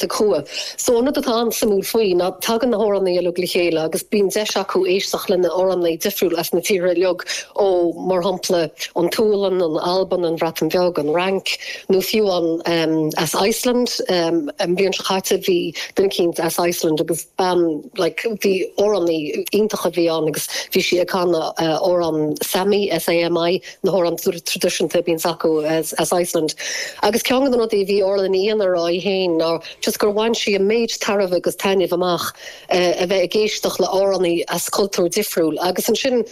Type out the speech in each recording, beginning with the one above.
Dé Cua. So an rud atá an-suimiúil faoi ná tagann na hamhránaithe uilig le chéile agus bíonn deis acu éisteacht le na hamhránaithe difriúil as na tíortha uilig ó mar shampla an tSualainn, Albain, an Bhreatain Bheag, an Fhrainc nó fiú an as Iceland. An bhliain seo chaite bhí duine eicínt as Iceland agus bean like bhí amhránaí iontach a bhí ann agus bhí sí ag canadh amhrán Sami, S-A-M-I, na hamhráin traidisiúnta a bhíonns acu as Iceland agus ceann de na rudaí a bhí Orla Ní Fhinneadha a rá í féin ná just gur bhain sí an méid tairbhe agus taitnimh amach a bheith ag éisteacht le amhránaithe as cultúir difriúil agus ansin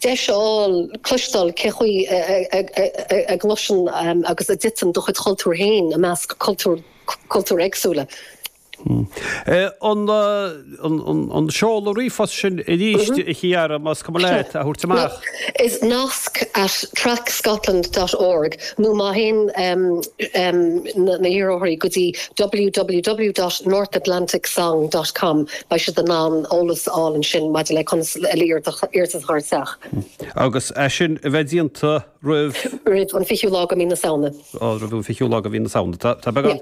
deis a fháil cloisteáil cé chaoi a gcloiseann agus a dtiteann do chuid chultúr féin i measc cultúir éagsúla. an seoladh ríomhphost sin arís, a Chiara, más cuma leat, a thabhairt amach. Is nasc at tracscotland dot org nó má théann na hiarrthóirí go dtí www dot northatlanticsong dot com beidh siad in ann eolas a fháil ansin maidir le conas a iarratas a chur isteach. Agus é sin a bheith déanta roimh? Roimh an 20ú lá de mhí na Samhna. Roimh an 20ú lá de mhí na Samhna. Tá beagán.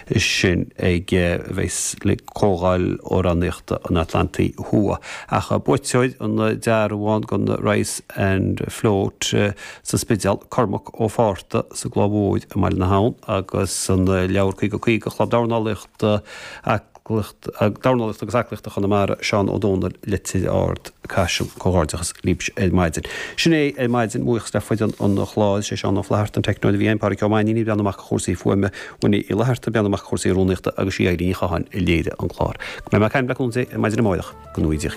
is sin ag plé le Comhdháil Amhránaíochta an Atlantaigh Thuaidh, ach buaiteoir an dearbháin don Rise and Float sa Spidéal, Cormac Ó Fátharta sa gClochmhór i mBaile na hAbhann, agus an leabhar Caoga Caoga, Club Dornálaíochta Acla. Dornálaíochta agus Aclaíochta Chonamara, Seán Ó Domhnaill, Leitir Ard, Caiseal, comhghairdeachas libhse ar maidin. Sin é ar maidin, buíochas le foireann an chláir, is é Seán Ó Flatharta an teicneoir a bhí ann, Pádraig Ó Mainín ag breathnú amach ar chúrsaí fuaime, Winnie Uí Fhlatharta ag breathnú amach ar chúrsaí rúnaíochta agus sí Eilín Ní Chatháin a léirigh an clár. Beidh mé ag caint libh le cúnamh Dé ar maidin amárach. Go nuige.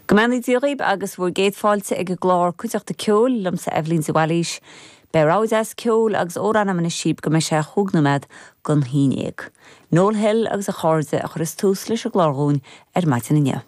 Go mbeannaí Dia dhaoibh agus bhur gcéad fáilte ag an gclár Cuideachta Ceoil, liomsa Eibhlín de Bhailís. Beidh rogha deas ceoil agus amhráin agam anseo dhaoibh go mbeidh sé chúig nóimeád don haon déag. Noel Hill agus a chairde a chuirfeas tús leis an gclár dhúinn ar maidin inniu.